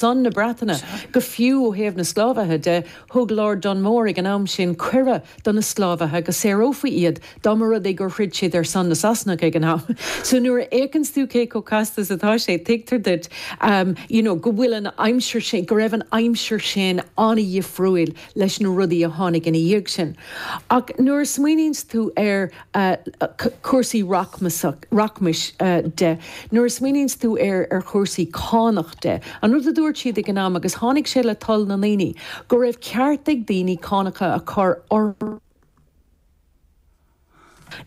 son na Breataine. Go fiú ó thaobh na sclábhaithe de, thug Lord Dunmore ag an am sin cuireadh do na sclábhaithe go saorfaí iad dá mba rud é gur throid siad ar son na Sasanach ag an am. So nuair a fhéachanns tú cé chomh casta is atá sé, tuigtear duit you know go bhfuil an aimsir sin, go raibh an aimsir sin an-dhifriúil leis na rudaí a tháinig ina dhiaidh sin. Ach nuair a smaoiníonns tú ar. cúrsaí rachmais de. Nuair a smaoiníonns tú ar ar chúrsaí cánach de, an rud a dúirt siad ag an am, agus tháinig sé le toil na ndaoine, go raibh ceart ag daoine cánacha a chur orthu,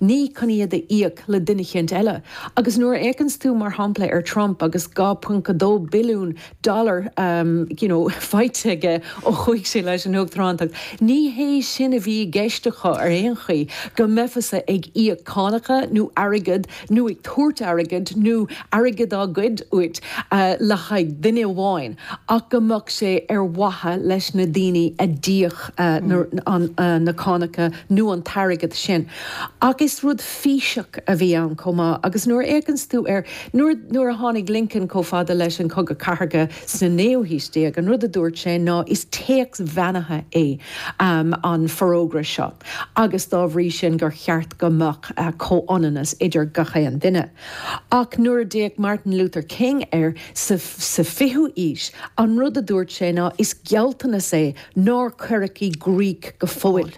ní chun iad a íoc le duine eicínt eile. Agus nuair a fhéachanns tú, mar shampla, ar Trump agus 2.2 billiún dollar you know faighte aige ó chuaigh sé leis an Uachtarántacht. Ní hé sin a bhí i gceist acu ar aon chaoi, go mbeifeása ag íoc cánacha nó airgead nó ag tabhairt airgead nó airgead á ghoid uait le haghaidh duine amháin ach go mbeadh sé ar mhaithe leis na daoine a d'íoc na cánacha nó an t-airgead sin. Ach is rud físeach a bhí ann chomh maith agus nuair a fhéachanns tú ar Nuair a tháinig Lincoln chomh fada leis an Chogadh Chathartha sa naoú haois déag, an rud a dúirt sé ná is téacs beannaithe é an Forógra seo agus dá bhrí sin gur cheart go mbeadh comhionannas idir gach aon duine. Ach nuair a d'fhéach Martin Luther King air sa fichiú aois, an rud a dúirt sé ná is gealltanas é nár cuireadh i gcrích go fóill.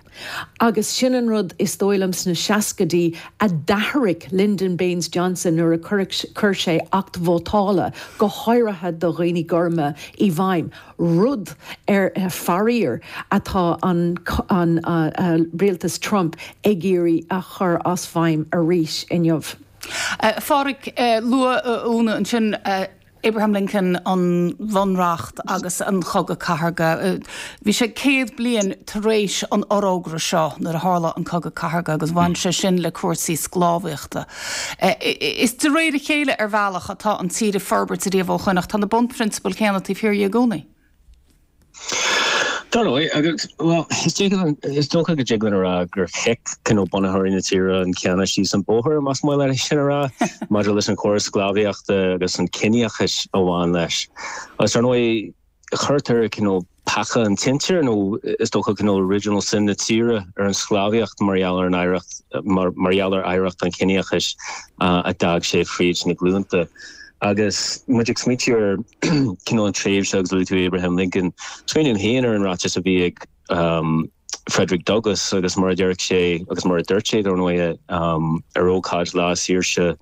Agus sin an rud, is dóigh liom, sna seascaidí a d'athraigh Lyndon Baines Johnson nuair a chuir sé Acht Vótála, go háirithe do dhaoine gorma, i bhfeidhm, rud ar, faraor, atá an an rialtas Trump ag iarraidh a chur as feidhm arís inniu. Phádraig, luaigh Úna ansin. Abraham Lincoln, an Bhunreacht agus an Cogadh Cathartha Bhí sé céad bliain tar éis an fhorógra seo nuair a tharla an Cogadh Cathartha agus bhain sé sin le cúrsaí sclábhaíochta. Is de réir a chéile, ar bhealach, atá an tír ag forbairt riamh ó shoin ach tá na bunphrionsabail chéanna taobh thiar de i gcónaí. Dar ndóigh, agus, bhuel, is dócha go dtig linn a rá gur chic cineál bunaitheoirí na tíre an canna síos an bóthar, más maith leat é sin a rá, maidir leis an chóras sclábhaíochta agus an ciníochas a bhain leis. Agus ar ndóigh, cuirtear cineál peaca an tsinsir, nó is dócha cineál original sin na tíre, ar an sclábhaíocht mar gheall ar an oidhreacht, mar gheall ar oidhreacht an chiníochais a d'fhág sé fríd na glúnta. Agus muid ag smaointiú ar chineál an tréimhse agus luaigh tú Abraham Lincoln, smaoiním féin ar an ráiteas a bhí ag Frederick Douglass agus mar a déarfadh sé, agus mar a dúirt sé dar ndóigh, ar ócáid Lá Saoirse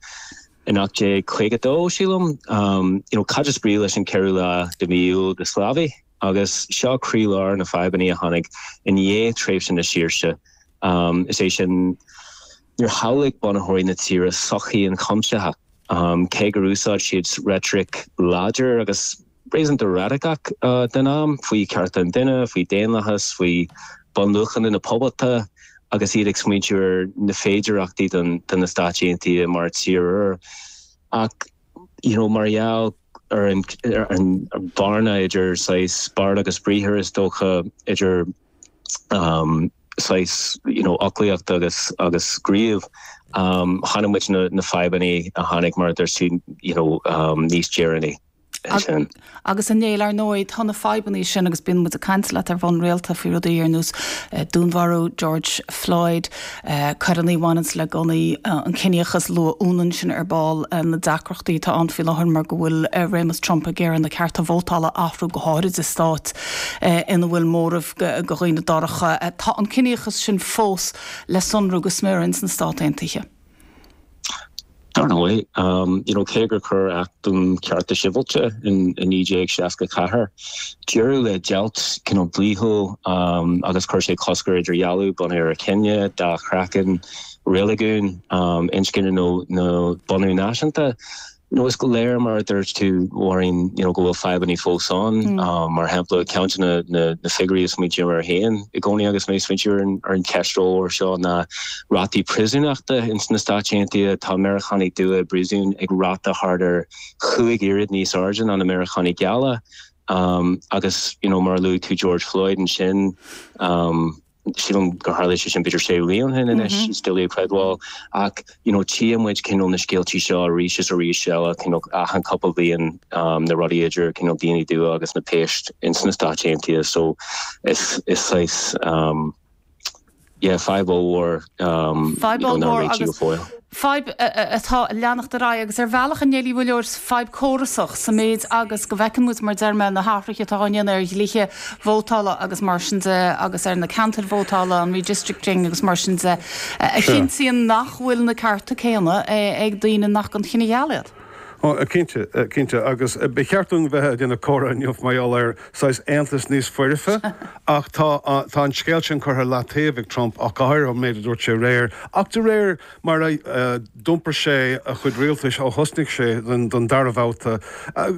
in 1852, sílim, you know cad is brí leis an 4ú lá de mhí Iúil do sclábhaí? Agus seo croílár na fadhbanna a tháinig i ndiaidh tréimhse na saoirse, is é sin, Níor shamhlaigh bunaitheoirí na tíre sochaí an chuimsithe, cé gur úsáid siad reitric láidir agus réasúnta radacach den am faoi chearta an duine, faoi dhaonlathas, faoi bhunluachanna na poblachta, agus iad ag smaointiú ar na féidearthachtaí do na Stáit Aontaithe mar tír úr. Ach, you know, mar gheall ar an bhearna idir saghas beart agus briathar, is dócha, idir saghas foclaíocht agus gníomh, tchíonn muid na fadhbanna a tháinig, mar a deirim, you know, níos deireanaí ansin. Agus a Néill, ar ndóigh, tá na fadhbanna sin agus bíonn muid ag caint leat ar bhonn rialta faoi rudaí ar nós dúnmharú George Floyd. Coireanna a bhaineann le gunnaí, an ciníochas luafaidh muid é sin ar ball, na deacrachtaí atá ann faoi láthair mar go bhfuil réimeas Trump ag iarraidh na cearta vótála a athrú go háirid i stáit ina bhfuil móramh de dhaoine dorcha, tá an ciníochas sin fós le sonrú go smior ins na Stáit Aontaithe. Dar ndóigh, you know cé gur chuir Acht um Chearta Sibhialta in 1964 deireadh le deighilt you know dlíthiúil agus chuir sé cosc ar idirdhealú bunaithe ar chine, dath craiceann, reiligiún, inscne nó nó bunadh náisiúnta, you know is léir mar a dúirt tú a Mháirín you know go bhfuil fadhbanna fós ann. Mar shampla, ceann de na na figiúirí a smaointím air féin i gcónaí agus mé ag smaointiú ar an cheist mhór seo ná, Rátaí priosúnachta, In sna Stáit Aontaithe, tá Meiriceánaigh dubha i bpríosún ag ráta thart ar chúig oiread níos airde ná na Meiriceánaigh geala. Agus, you know, mar a luaigh tú George Floyd ansin, sílim gur tharla sé sin b'fhéidir sé bhliain ó shin anois, is doiligh a chreidbheáil, ach, you know, tchíonn muid, you know, na scéaltaí seo arís is arís eile, you know, achan cúpla bliain, na rudaí idir, you know, daoine dubha agus na péas in sna Stáit Aontaithe, so is, is saghas, Yeah, fadhb ollmhór. Fadhb ollmhór agus fadhb atá ag leanacht ar aghaidh agus ar bhealach a Néill bhuel fadhb córasach sa méid agus go bhfeiceann muid, mar a deir mé, na hathruithe atá á ndéanamh ar dhlíthe vótála agus mar sin de agus ar na ceantair vótála, an redistricting agus mar sin de, a chinntíonn nach bhfuil na cearta céanna ag daoine nach den chine gheal iad. Ó, cinnte, cinnte, agus ba cheart dúinn bheith ag déanamh comhrá inniu mar gheall ar saghas aontais níos foirfe, ach tá an scéal sin curtha i leataobh ag Trump, ach go háirithe ón méid a dúirt sé aréir, ach de réir mar a d'iompair sé a chuid rialtais ó thosnaigh sé don dara bhabhta.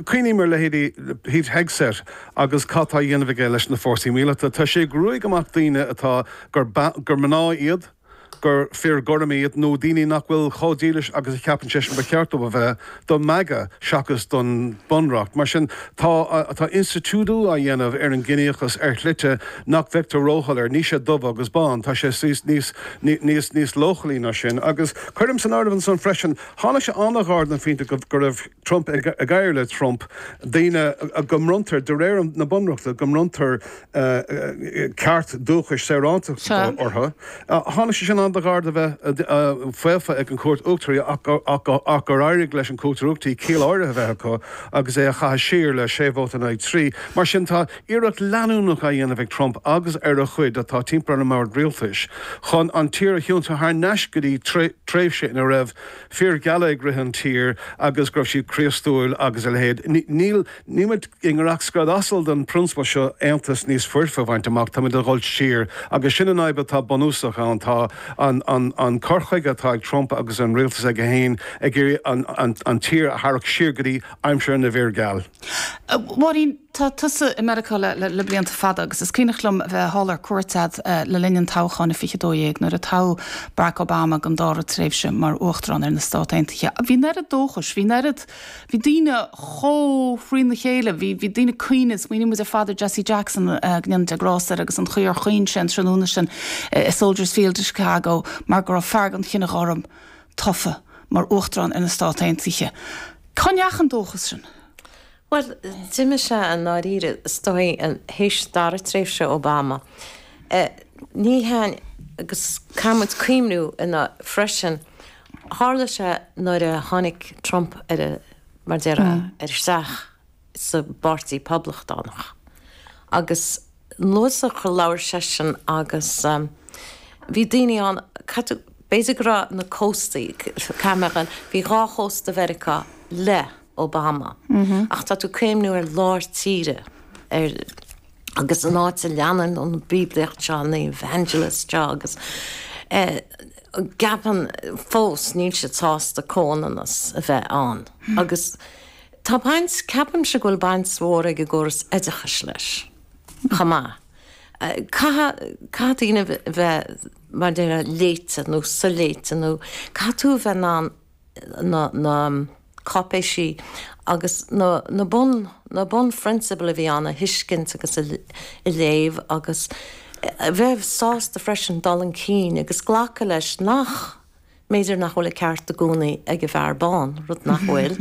Cuimhním ar leithéidí Pete Hegseth agus cad tá a dhéanamh aige leis na fórsaí míleata. Tá sé ag ruaigeadh amach daoine atá, gur mná iad, gur fir gorm iad nó daoine nach bhfuil chomh dílis agus a cheapann seisean ba cheart dóibh a bheith do MAGA seachas don Bunreacht. Mar sin, tá tá institiúidiú á dhéanamh ar an gciníochas ar shlite nach bhfeictear róshoiléir. Níl sé dubh agus bán, tá sé níos níos níos níos leochailí ná sin. Agus cuirim san áireamh ansan freisin, tháinig sé an-ghar don phointe go raibh Trump ag éirí le Trump daoine go mbronntar, de réir na bunreachta, go mbronntar ceart dúchais saorántachta orthu. Tháinig sé sin an-ghairid do bheith faofa ag an gCúirt Uachtaraí ach gur éirigh leis an gCúirt Uachtaraí ciall áirithe a bheith acu agus é a chaitheamh siar le sé vóta in aghaidh trí. Mar sin tá iarracht leanúnach á dhéanamh ag Trump agus ar a chuid atá timpeall ar an mbord rialtais chun an tír a thiontú thar n-ais go dtí tréimhse ina raibh fir gheala ag rith an tír agus go raibh siad Críostúil agus a leithéid. Níl, níl muid i ngiorracht scread asail den phrionsabal seo aontas níos foirfe a bhaint amach, táimid ag dhul siar agus sin an fhadhb atá bunúsach ann. Tá an an cur chuige atá ag Trump agus an rialtas aige féin ag iarraidh an an tír a tharrac siar go dtí aimsir na bhfear geal. Máirín, tá tusa i Meiriceá le blianta fada agus is cuimhneach liom a bheith thall ar cuairt agat le linn an toghcháin i 2012 nuair a toghadh Barack Obama don dára tréimhse mar Uachtarán ar na Stát Aontaithe. Bhí an oiread dóchais, bhí an oiread, bhí daoine chomh thrína chéile, bhí daoine ag caoineadh, smaoiníonn muid ar fad ar Jesse Jackson, go ndéana Dia grásta air, agus an chaoi ar chaoin sé an tráthnóna sin i Soldiers Field i Chicago mar go raibh fear den chine gorm tofa mar Uachtarán ar na Stát Aontaithe. Cá ndeachaigh an dóchas sin? Bhuel, d'imigh sé i ndáiríre, is dóigh, théis dara tréimhse Obama. Ní haon, agus caithfidh muid cuimhniú anois, freisin, tharla sé nuair a tháinig Trump ar an, mar déarfá, ar isteach sa bPáirtí Poblachtánach. Agus nuair a labhair seisean agus bhí daoine ann, cad tú, b'fhéidir go raibh na cóstaí, caithfidh mé a rá, bhí dhá chósta Mheiriceá le Obama. Ach tá tú ag cuimhniú ar lár tíre, ar, agus an áit a leanann an bhíoblaíocht seo, na evangelists seo agus a gceapann fós, níl siad sásta comhionannas a bheith ann. Agus Tá baint, ceapaimse go bhfuil baint mhór ag an gcóras oideachais leis chomh maith. Caithfidh, caithfidh daoine bheith, mar déarfá, léite nó soléite nó caithfidh tú a bheith in ann na, na cáipéisí agus na, na bun, na bunphrionsabail a bhí ann a thuiscint agus a, a léamh agus a bheith sásta freisin dul chun cinn agus glacadh leis nach, mb'fhéidir nach bhfuil an ceart i gcónaí ag an bhfear bán, rud nach bhfuil,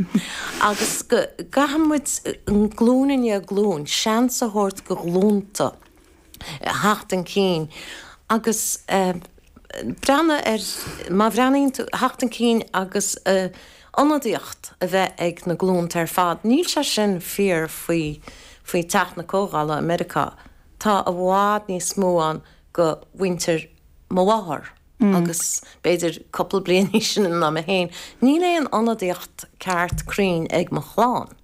agus go gcaithfidh muid, glúin i ndiaidh glúin, seans a thabhairt do ghlúnta theacht chun cinn agus breathnú ar, má bhreathnaíonn tú, theacht chun cinn agus ionadaíocht a bheith ag na glúnta ar fad. Níl sé sin fíor faoi Teach na Comhdhála i Meiriceá, tá i bhfad níos mó ann de mhuintir mo mháthar. agus b'fhéidir cupla bliain níos sine ná mé féin, níl aon ionadaíocht ceart cruinn ag mo chlann.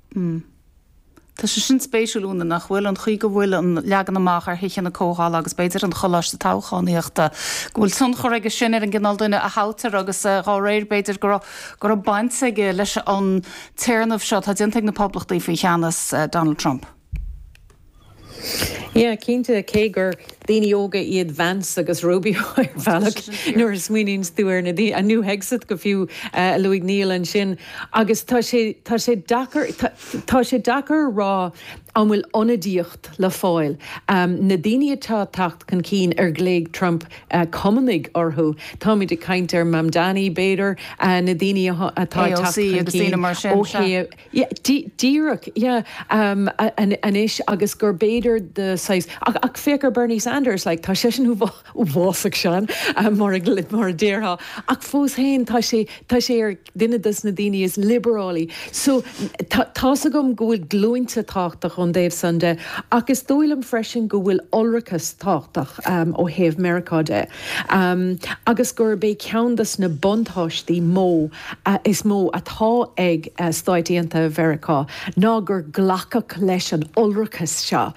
Tá sé sin spéisiúil, Úna, nach bhfuil? An chaoi go bhfuil an leagan amach ar thithe na comhdhála agus b'fhéidir an coláiste toghchánaíochta, go bhfuil tionchar aige sin ar an gcineál duine a thoghtar agus dá réir, b'fhéidir go raibh baint aige leis an téarnamh seo atá déanta ag na poblachtaigh faoi cheannas Donald Trump. Yeah, cinnte, cé gur daoine óga iad Vance agus Rubio ar bhealach, nuair a smaoiníonns tú ar na daoine, ar Hegseth go fiú, a luaigh Niall ansin, agus tá sé, tá sé deacair, tá sé deacair a rá an bhfuil ionadaíocht le fáil, na daoine atá ag teacht chun cinn ar ghlaoigh Trump cumannaigh orthu, táimid ag caint ar Mamdani, b'fhéidir, na daoine atá ag teacht chun cinn ó thaobh. Yeah, díreach, yeah. Anois agus gurb fhéidir de shaghas, ach féach ar Bernie Sanders, like, tá seisean uafásach, sean, mar a déarfá, ach fós féin tá sé, tá sé ar duine dos na daoine is liobarálaí. So, tá's agam go bhfuil glúinte tábhachtach ón dtaobh san de, ach is dóigh liom freisin go bhfuil iolrachas tábhachtach ó thaobh Meiriceá de, agus gurb é ceann dos na buntáistí mó, is mó atá ag Stáit Aontaithe Mheiriceá ná gur glacadh leis an iolrachas seo,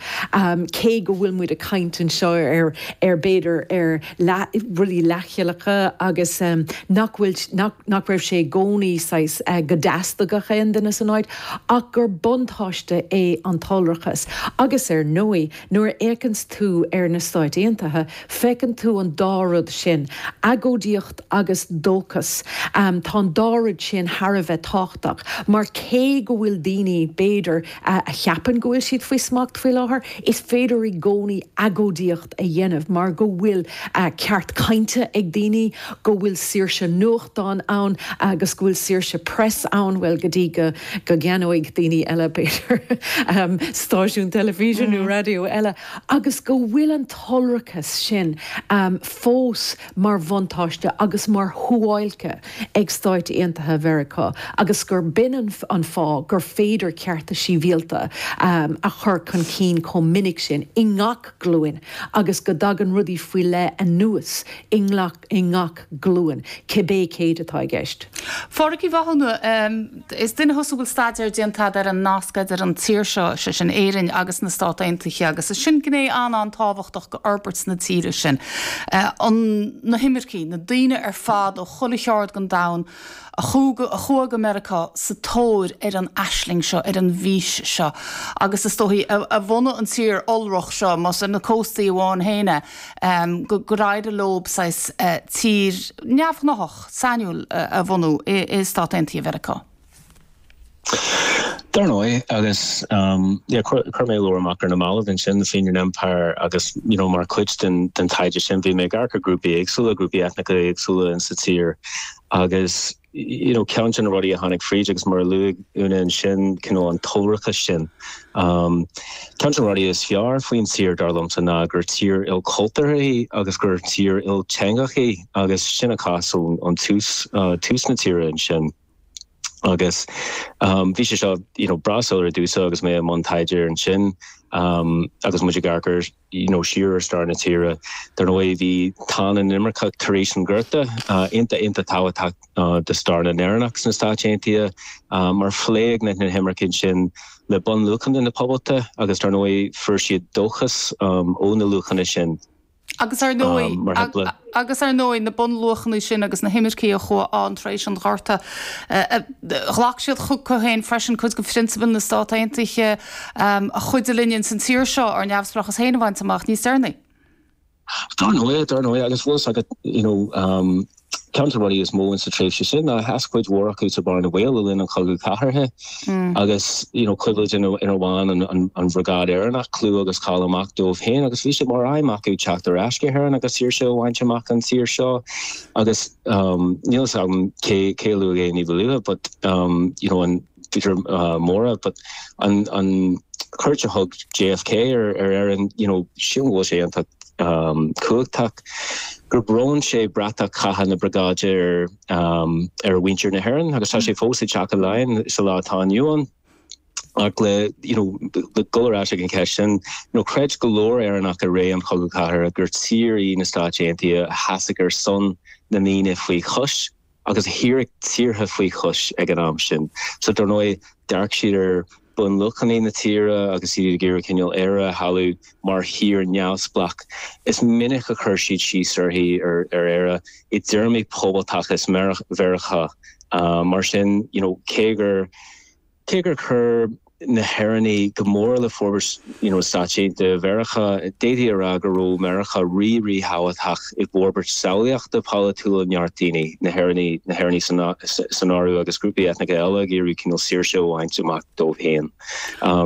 cé go bhfuil muid ag caint anseo ar, b'fhéidir, ar rudaí leathchilleacha agus nach bhfuil, nach raibh sé i gcónaí saghas, go dteastódh gach aon duine san áit, ach gur buntáiste é an t-iolrachas. Agus ar ndóigh. Nuair a fhéacanns tú ar na Stáit Aontaithe, feiceann tú an dá rud sin, agóidíocht agus dóchas. Tá an dá rud sin thar a bheith tábhachtach, mar cé go bhfuil daoine, b'fhéidir, a cheapann go bhfuil siad faoi smacht faoi láthair, is féidir i gcónaí agóidíocht a dhéanamh mar go bhfuil ceart cainte ag daoine, go bhfuil saoirse nuachtán ann agus go bhfuil saoirse press ann, bhuel, go dtí go gceannóidh daoine eile, b'fhéidir, stáisiún teilifíse nó raidió eile, agus go bhfuil an t-iolrachas sin fós mar bhuntáiste agus mar shuáilce ag Stáit Aontaithe Mheiriceá agus gur b'in an fáth gur féidir cearta síbhialta a chur chun cinn chomh minic sin i ngach glúin, agus go dtagann rudaí faoi leith anuas i ngach glúin, cibé céid atá i gceist. A Phádraig Uí Mhathúna, is duine thusa a bhfuil staidéar déanta agat ar an nasc idir an tír seo, is é sin Éirinn, agus na Stáit Aontaithe, agus is sin gné an-an-tábhachtach d'fhorbairt na tíre sin, na himircigh, na daoine ar fad ó chuile cheard den domhan, a chuaigh a chuaigh go Meiriceá sa tóir ar an aisling seo, ar an bhfís seo, agus is dóigh, a a bhunaigh an tír iolrach seo, más ar na cóstaí amháin féin é, gur éirigh leo saghas tír neamhghnáthach, sainiúil a bhunú i i Stáit Aontaithe Mheiriceá. Dar ndóigh, agus chuir mé leabhar amach ar na mallaibh ansin, The Fenian Empire, agus you know mar chuid den taighde sin bhí mé ag amharc ar ghrúpaí éagsúla, grúpaí eitneacha éagsúla sa tír agus you know ceann de na rudaí a tháinig fríd agus mar a luaigh Úna ansin you know an t-iolrachas sin. Ceann de na rudaí is fearr faoin tír, dar liomsa, ná gur tír ilchultúrtha í agus gur tír ilteangach í agus sin an cás ón tús, tús na tíre ansin. Agus bhí sé seo you know breá soiléir domhsa agus mé i mbun taighde air sin agus muid ag amharc you know siar ar stair na tíre. Dar ndóigh bhí tonn na n-inimirceach tar éis an Ghorta iontach iontach tábhachtach do stair na nÉireannach sna Stáit Aontaithe mar chloígh na hinimircigh sin le bunluachanna na poblachta agus dar ndóigh fuair siad dóchas ó na luachanna sin. Agus ar ndóigh, mar shampla. Agus ar ndóigh, na bunluachanna sin agus na himircigh a chuaigh ann tar éis an Ghorta, ghlac siad chucu féin freisin cuid de phrionsabail na Stát Aontaithe a chuidigh linn ins an tír seo ár neamhspleáchas féin a bhaint amach níos deireanaí. Dar ndóigh, dar ndóigh. Agus bhfuil fhios agat, you know. Ceann de na rudaí is mó in sa tréimhse sin ná sheas cuid mhór acu sa bhearna bhaoil le linn an Chogadh Cathartha agus you know cuimhnímid gur bhain an an an Bhriogáid Éireannach clú agus cáil amach dóibh féin agus bhí sé mar aidhm acu teacht ar ais go hÉirinn agus saoirse a bhaint amach anseo agus um, níl fhios agam cé cé a luaigh é níba luaithe but um, you know, an Tá siad ar mór a but an cuairt a thug JFK ar Éirinn you know sin an bhfuil sé iontach cumhachtach gur bhronn sé bratach chatha na briogáide ar mhuintir na hÉireann agus tá sé fós i dTeach Laighean sa lá atá inniu ann ach le you know le dhul ar ais ag an cheist sin you know creid go leor Éireannach i ré an chogaidh chathartha gur tír í na Stáit Aontaithe a sheasfadh ar son na ndaoine faoi chois. agus a a shaorfadh tíortha faoi chois ag an am sin. So, dar ndóigh, d'amharc siad ar bhunluachanna na tíre agus iad ag iarraidh cineál Éire a shamhlú mar thír neamhspleách. Is minic a chuir siad síos uirthi, ar Éire, i dtéarmaí poblachtachas Mheiriceá. Mar sin, you know, cé gur. Cé gur chuir na hÉireannaigh go mór le forbairt na Stáit Aontaithe Mheiriceá, d'fhéadfaí a rá go raibh Meiriceá rí-ríthábhachtach i bhforbairt samhlaíochta polaitiúla neart daoine, na hÉireannaigh, na hÉireannaigh san áireamh, agus grúpaí eitneacha eile ag iarraidh cineál saoirse a bhaint amach dóibh féin.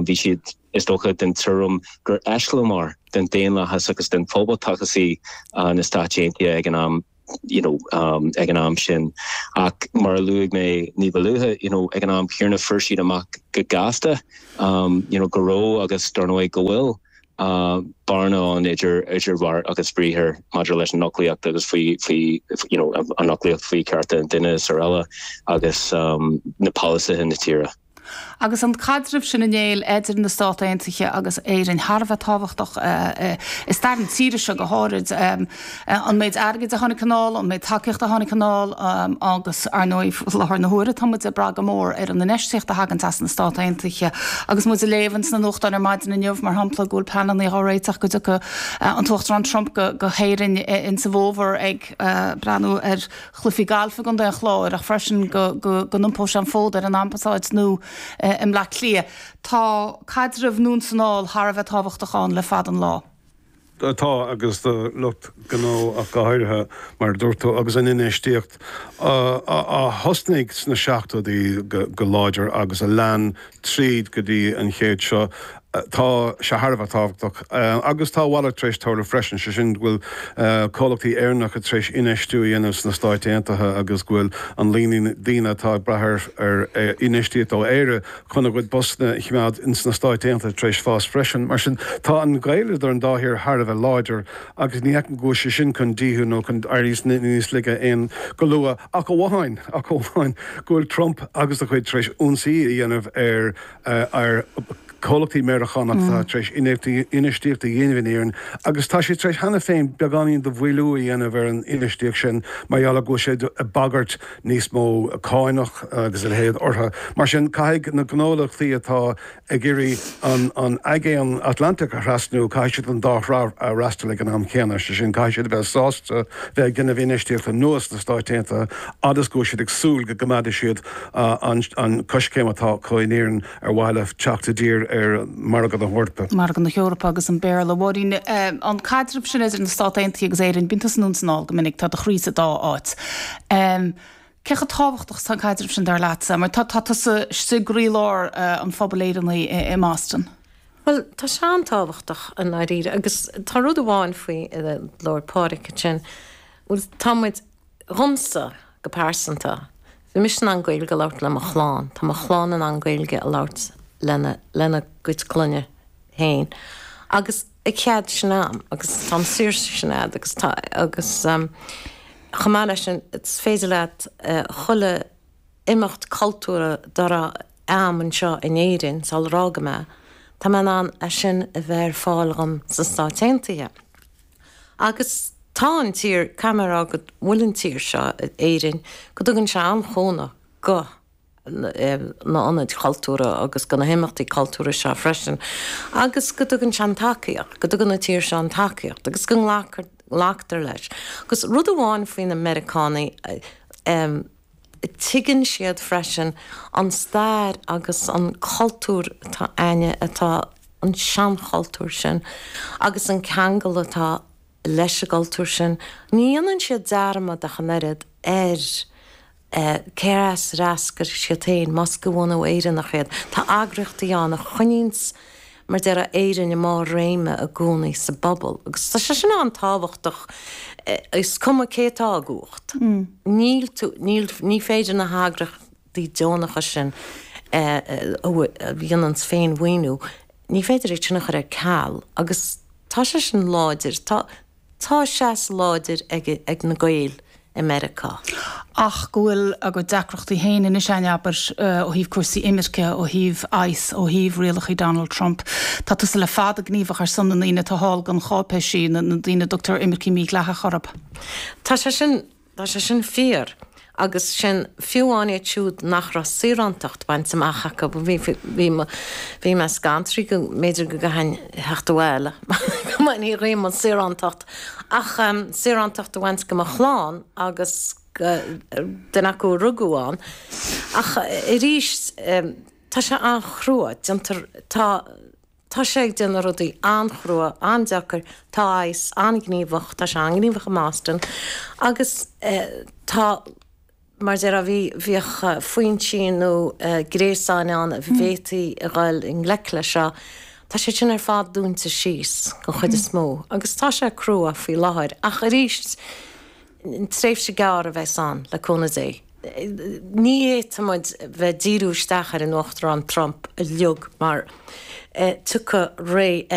Bhí siad, is dócha, den tuairim gur eiseamláir den daonlathas agus den phoblachtachas í na Stáit Aontaithe ag an am. you know, um, ag an am sin. Ach mar a luaigh mé ní ba luaithe, you know, ag an am chéanna fuair siad amach go gasta, um, you know, go raibh agus dar ndóigh go bhfuil uh, bearna ann idir, idir bheart agus bhriathar maidir leis an fhoclaíocht agus faoi, faoi, you know, an fhoclaíocht faoi cearta an duine is araile agus um, na polasaithe na tíre. Agus an caidreamh sin ar ndóigh idir na Stát Aontaithe agus Éirinn thar a bheith tábhachtach i stair na tíre seo go háirid, an méid airgid a tháinig anall, an méid tacaíochta a tháinig anall agus, ar ndóigh, i láthair na huaire tá muid ag brath go mór ar an infheistíocht a thagann as na Stát Aontaithe. Agus muid ag léamh ins na nuachtáin ar maidin inniu, mar shampla, go bhfuil pleananna á réiteach go dtiocfadh an tUachtarán Trump go hÉirinn ins an bhfómhar ag breathnú ar chluiche gailf i gContae an Chláir ach freisin go n-iompódh sé an fód ar an Ambasáid nua i mBleá Cliath. Tá caidreamh an-suntasach thar a bheith tábhachtach ann le fada an lá. Tá, agus do lucht gnó ach go háirithe, mar a dúirt tú, agus an infheistíocht a thosnaigh sna seachtóidí go láidir agus a lean tríd go dtí an chéad seo. Tá sé thar a bheith tábhachtach, agus tá a mhalairt tar éis tarlú freisin, sé sin go bhfuil comhlachtaí Éireannacha tar éis infheistiú a dhéanamh sna Stáit Aontaithe agus go bhfuil an líon daoine atá ag brath ar infheistíocht ó Éire chun a gcuid postanna a choimeád ins na Stáit Aontaithe tar éis fás freisin. Mar sin, tá an gaol idir an dá thír thar a bheith láidir agus ní fheicim go bhfuil sé sin chun díothú nó chun éirí níos laige aon go luath, ach amháin, ach amháin, go bhfuil Trump agus a chuid tar éis ionsaí a dhéanamh ar. ar chomhlachtaí Meiriceánacha atá tar éis infheistíocht a dhéanamh in Éirinn agus tá siad tar éis cheana féin beagáinín de mhoilliú a dhéanamh ar an infheistíocht sin mar gheall go bhfuil sé ag bagairt níos mó cánach agus a leithéid orthu. Mar sin, caithfidh na gnólachtaí atá ag iarraidh an Aigéan Atlantaigh a thrasnú, caithfidh siad an dá thrá a fhreastal ag an am céanna. Is é sin, caithfidh siad a bheith sásta bheith ag déanamh infheistíochta nua sna Stáit Aontaithe agus go bhfuil siad ag súil go gcoimeádfaidh siad an coiscéim atá acu in Éirinn ar mhaithe le teacht i dtír ar mhargadh na hEorpa. Margadh na hEorpa agus an Béarla. Mháirín, An caidreamh sin idir na Stáit Aontaithe agus Éirinn, bíonn tusa anonn is anall go minic, tá do chroí sa dá áit. Cé chomh tábhachtach is tá an caidreamh sin dar leatsa? Mar tá tusa istigh i gcroílár an phobail Éireannaigh i mBoston. Bhuel, tá sé an-tábhachtach i ndáiríre agus tá rud amháin faoi ar labhair Pádraig ansin, bhuel tá muid, Dhomsa, go pearsanta, bím-se in ann Gaeilge a labhairt le mo chlann, tá mo chlann in ann Gaeilge a labhairt lena gcuid clainne féin, agus tá cead sin a'm, agus tá an saoirse sin a'd, agus tá, agus chomh maith leis sin, is féidir leat chuile. imeacht cultúrtha dá raibh a'm anseo in Éirinn sular imigh mé, tá mé in ann é sin a bheith ar fáil dhom sna Stáit Aontaithe. Agus tá an tír, caithfidh mé rá go bhfuil an tír seo, Éirinn, go dtugann sé an-chúnamh do na ionaid chultúrtha agus do na himeachtaí cultúrtha seo freisin agus go dtugann sé an tacaíocht, go dtugann an tír seo an tacaíocht agus go nglactar leis. Agus rud amháin faoi na Meiriceánaigh, eh. Tuigeann siad freisin an stair agus an cultúr atá againne atá an seanchultúr sin agus an ceangal atá leis an gcultúr sin. Ní dhéanann siad dearmad ach an oiread ar cé as a d'eascair siad féin, más de bhunadh Éireannach iad. Tá eagraíochtaí ann a choinníonns mar a déarfá Éirinn i mbarr réime i gcónaí sa bpobal agus tá sé sin an-tábhachtach is cuma cé atá i gcumhacht. Níl tú, níl, ní féidir na heagraíochtaí deonacha sin a dhéananns féin-mhaoiniú, ní féidir iad sin a chur ar ceal agus tá sé sin láidir. Tá, Tá seas láidir ag na Gaeil i Meiriceá. ach go bhfuil a gcuid deacrachtaí féin anois ann, abair, ó thaobh cúrsaí imirce, ó thaobh ICE, ó thaobh rialacha Donald Trump. Tá tusa le fada gníomhach ar son na ndaoine atá thall gan cháipéisí, na daoine a dtugtar 'imircigh mhídhleathacha' orthu. Tá sé sin Tá sé sin fíor, agus sin fiú amháin iad siúd nach raibh saorántacht bainte amach acu. Bhí mé scanraithe go mb'fhéidir go gcaithfinn theacht abhaile go mbainfí dhíom an saorántacht, ach saorántacht a bhaint de mo chlann agus duine acu a rugadh ann. Ach arís, tá sé an-chrua. Déantar, tá. Tá sé ag déanamh rudaí an-chrua, an-deacair, tá ICE an-ghníomhach, tá sé an-ghníomhach i mBoston agus tá, mar a déarfá, bhí, bhíodh foinsí nó gréasáin ann a bhféadfaí a dhul i ngleic leis seo. Tá siad sin ar fad dúnta síos, den chuid is mó, agus tá sé crua faoi láthair ach arís, tréimhse gearr a bheas ann, le cúnamh Dé. Ní fhéadfaidh muid a bheith díriú isteach ar an Uachtarán Trump uilig mar tiocfaidh ré eile.